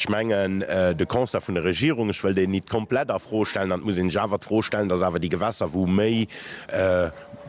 Ech mengen, de Constat vun der Regierung, ech wëll deen nit komplett a Fro stellen, an et muss een sech awer d'Fro stellen, dass awer déi Gewässer, wou méi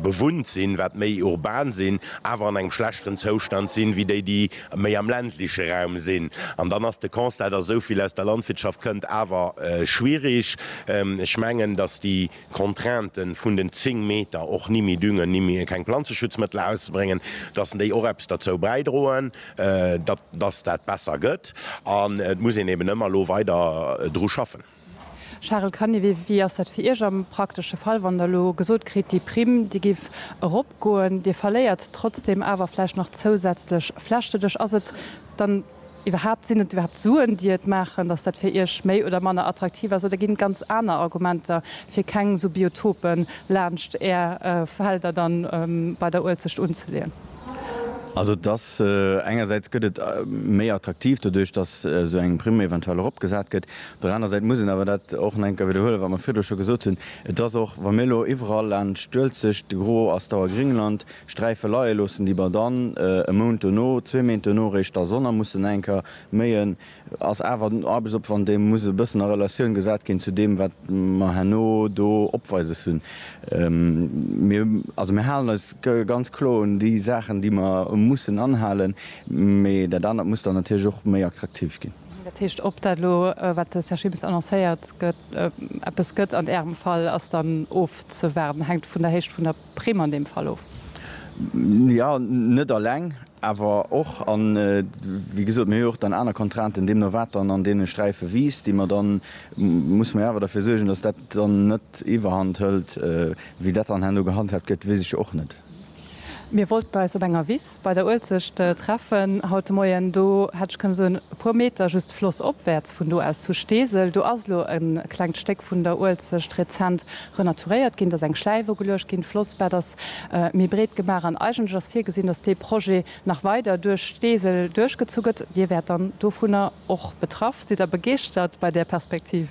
bewunnt sinn, wat méi urban sinn, awer an engem schlechteren Zoustand sinn, wéi déi, déi méi am ländleche Raum sinn. An dann ass de Constat, dass esou vill aus der Landwirtschaft kënnt, awer schwierig. Ech mengen, dass déi. Contrainte vun den 10 Meter, och ni méi düngen, ni méi keng Planzeschutzmëttel auszebréngen, datt déi och eppes derzou bäidroen, datt datt dat besser gëtt. An et muss een eben ëmmer elo weider dru schaffen. Charel Canivet, Wéi ass dat fir Iech am praktesche Fall, wann Der elo gesot kritt, déi Primm, déi géif eropgoen, Dir verléiert trotzdeem awer vläicht nach zousätzlech Fläche? Ass et dann Iwwerhaapt, sinn et iwwerhaapt Suen, déi et maachen, datt dat fir Iech méi oder manner attraktiv ass? Oder ginn et ganz aner Argumenter, fir keng esou Biotopen laanscht Är Felder dann bei der Uelzecht unzeleeën? Also et ass, engersäits gëtt et méi attraktiv doduerch, datt esou eng Primm eventuell erop gesat gëtt. Op der aner Säit muss een awer dat och nach eng Kéier widderhuelen, wat mer virdru scho gesot hunn, et ass och, wa mir elo iwwerall laanscht d'Uelzecht, de Gros ass d'Auer Gréngland, Sträife leie loossen, déi mer dann e Mount dono, zwee Méint dono réischt da sonner mussen enker méien, ass awer den Aarbechtsopwand, dee muss e bëssen a Relatioun gesat ginn zu deem, wat mer herno do opweises hunn. Mir, also mir halen eis ganz kloer un déi Saachen, déi mer mussen anhalen, mee dat anert muss dann natierlech och méi attraktiv ginn. Dat heescht, ob dat elo, wat de Här Schibes annoncéiert, eppes gëtt an Ärem Fall, ass dann ofzewaarden, hänkt vun der Héicht vun der Prime an deem Fall of. Jo, net alleng, awer och. A wéi gesot, mir hu jo och dann aner Contrainten, deemno wat dann an deene Sträife wiisst, déi mer dann, muss mer jo awer derfir suergen, datt dat dann net iwwerhand hëlt. Wéi dat dann herno gehandhaabt gëtt, weess ech jo och net. Mir wollten eis op enger Wiss bei der Uelzecht treffen haut de Moien. Do hätt ech kënne soen, e puer Meter just flossopwäerts vun do aus zu Steesel, do ass elo e klengt Stéck vun der Uelzecht rezent renaturéiert ginn, dass eng Schläif ugeluecht ginn, d'Flossbett ass méi breet gemaach an eigentlech ass virgesinn, dass dee Projet nach weider duerch Steesel duerchgezu gëtt. Dir wäert dann dovunner och betraff. Sidd Der begeeschtert bei där Perspektiv?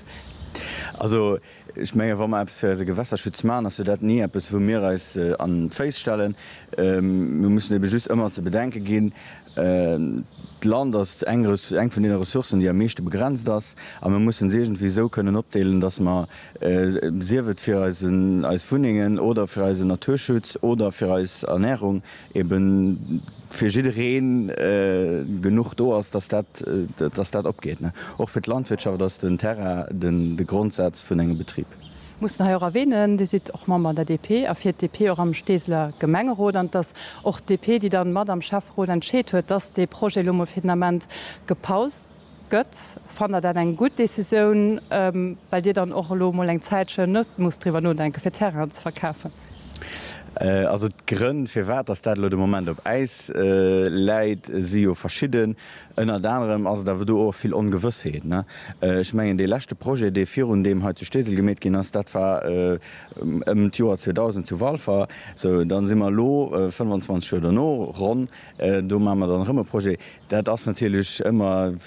Also, ech menge wa mer eppes fir eise Gewässerschutz maachen, ass jo dat ni eppes wou mir eis an d'Féiss stellen. Mir mussen ebe just ëmmer ze bedenke ginn, D'Land ass eng eng vun deene Ressourcen, déi am meeschte begrenzt ass, a mir mussen se iergendwéi esou kënnen opdeelen, datt mer, sief et fir eisen eis Wunnengen oder fir eisen Naturschutz oder fir eis Ernährung, eben fir jidderee genuch do ass, datt dat datt dat opgeet. Och fir d'Landwirtschaft ass den Terrain de Grondsaz vun engem Betrib. Mussen hei och erwähnen, Dir sidd och Member an der DP a fiert d'DP och am Steeseler Gemengerot. An et ass och d'DP, déi dann mat am Schäfferot entscheet huet, dass dee Projet elo mol fir den Ament gepaust gëtt. Fannt Der dat eng gutt Décisioun, well Dir dann och elo mol eng Zäitchen net musst driwwer nodenken, fir Terrainen ze verkafen? Also d'Grënn, firwat dass dat elo de Moment op Äis läit, si jo verschidden. Ënnert anerem ass et awer do och vill Ongewëssheet. Ech mengen, dee leschte Projet, dee virun deem hei zu Steesel gemeet ginn ass, dat war ëm d'Joer 2000 zu Walfer. Sou, dann si mer elo 25 Joer dono, ronn, do maache mer dann erëm e Projet. Dat ass natierlech ëmmer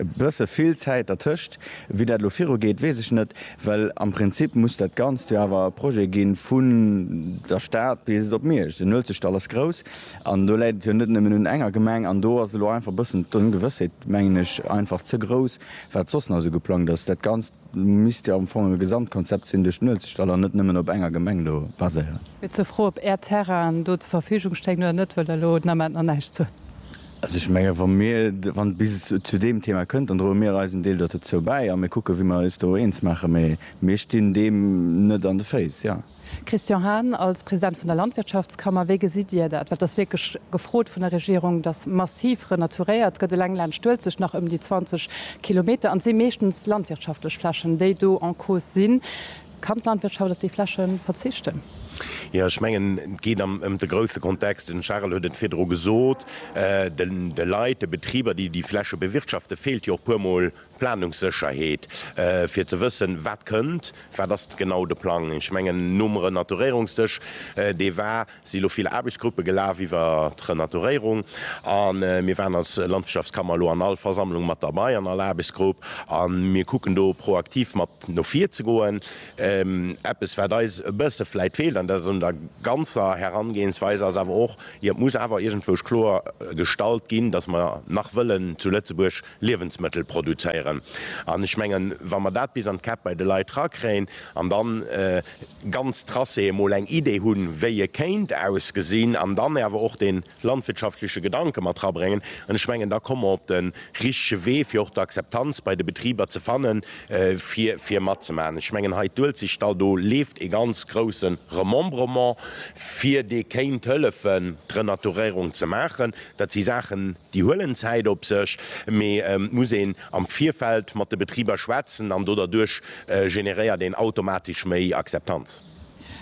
e bësse vill Zäit dertëscht. Wéi dat elo virugeet, weess ech net, well am Prinzip muss dat Ganzt jo awer e Projet gi vu der Stad bis op Miersch. Den Uelzechtdall ass grouss. An do läit et jo net nëmmen un enger Gemeng. An do ass elo einfach e bëssen d'Ongewëssheet, mengen ech, einfach ze grouss, wat soss nach esou geplangt ass. Dat Ganzt misst jo am Fong e Gesamtkonzept sinn, duerch d'Nuel ze stellen an net nëmmen op enger Gemeng do baséieren. Mir zur Fro, ob Är Terrainen do zur Verfügung stéingen oder net, wëll der elo den Ament nach näischt soen. Also ech menge wa mir, wann et bis zu deem Thema kënnt, dann droe mir eisen Deel dozou bäi a mir kucken, wéi mer eis do eens maachen. Mee mir stinn deem net an de Féiss, jo. Christian Hahn, Als President vun der Landwirtschaftskammer, wéi gesitt Dir dat? Well et ass wierklech gefrot vun der Regierung, datt massiv renaturéiert gëtt, eleng laanscht d'Uelzecht nach ëm déi 20 Kilometer, an et si meeschtens landwirtschaftlech Flächen, déi do en cause sinn. Kann d'Landwirtschaft op déi Fläche verzichten? Jo, ech mengen, et geet ëm de grousse Kontext. Den Charel huet et virdru gesot, De Leit, de Betriber, déi déi Fläche bewirtschaften, feelt jo och puermol Planungssécherheet, fir ze wëssen, wat kënnt, wat ass genau de Plang. Ech mengen, nom Renaturéierungsdësch, dee war, si lo vill Aarbechtsgruppe gelaf iwwer d'Renaturéierung. A mir waren als Landwirtschaftskammer elo an all Versammlung mat derbei, an all Aarbechtsgrupp. A mir kucken do proaktiv mat no vir ze goen. Eppes, wat eis e bësse vläicht feelt, an dat ass un der ganzer Herangehensweis, ass awer och, jo, et muss awer iergendwou kloergestallt ginn, datt mer nach wëllen zu Lëtzebuerg Liewensmëttel produzéieren. An ech mengen, wa mer dat bis an d'Käpp bei de Leit erakréien an da ganz tracé emol eng Idee hunn, wéi e kéint ausgesinn, an dann awer och dee landwirtschaftleche Gedanke mat erabréngen, an ech mengen, da komme mer op de richtege Wee, fir och d'Akzeptanz bei de Betriber ze fannen, fir matzemaachen. Ech mengen, hei d'Uelzechtdall, do leeft e ganz grousse Remembrement, fir dee kéint hëllefen, d'Renaturéierung ze maachen. Dat si Saachen, Déi huelen Zäit op sech, mee et muss een am Virfeld mat de Betriber schwätzen an do derduerch generéiert een automatesch méi Akzeptanz.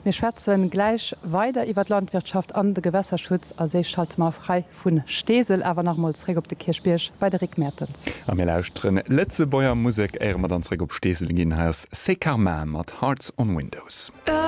Mir schwätze gläich weider iwwer d'Landwirtschaft an de Gewässerschutz a Séich schalte mer hei vu Steesel awer nach emol zréck op de Kierchbierg bei de Rick Mertens. A mir lauschteren Lëtzebuerger Musek éiere mer dann zréck op Steesel ginn. Hei ass C'est Karma mat Hearts on Windows.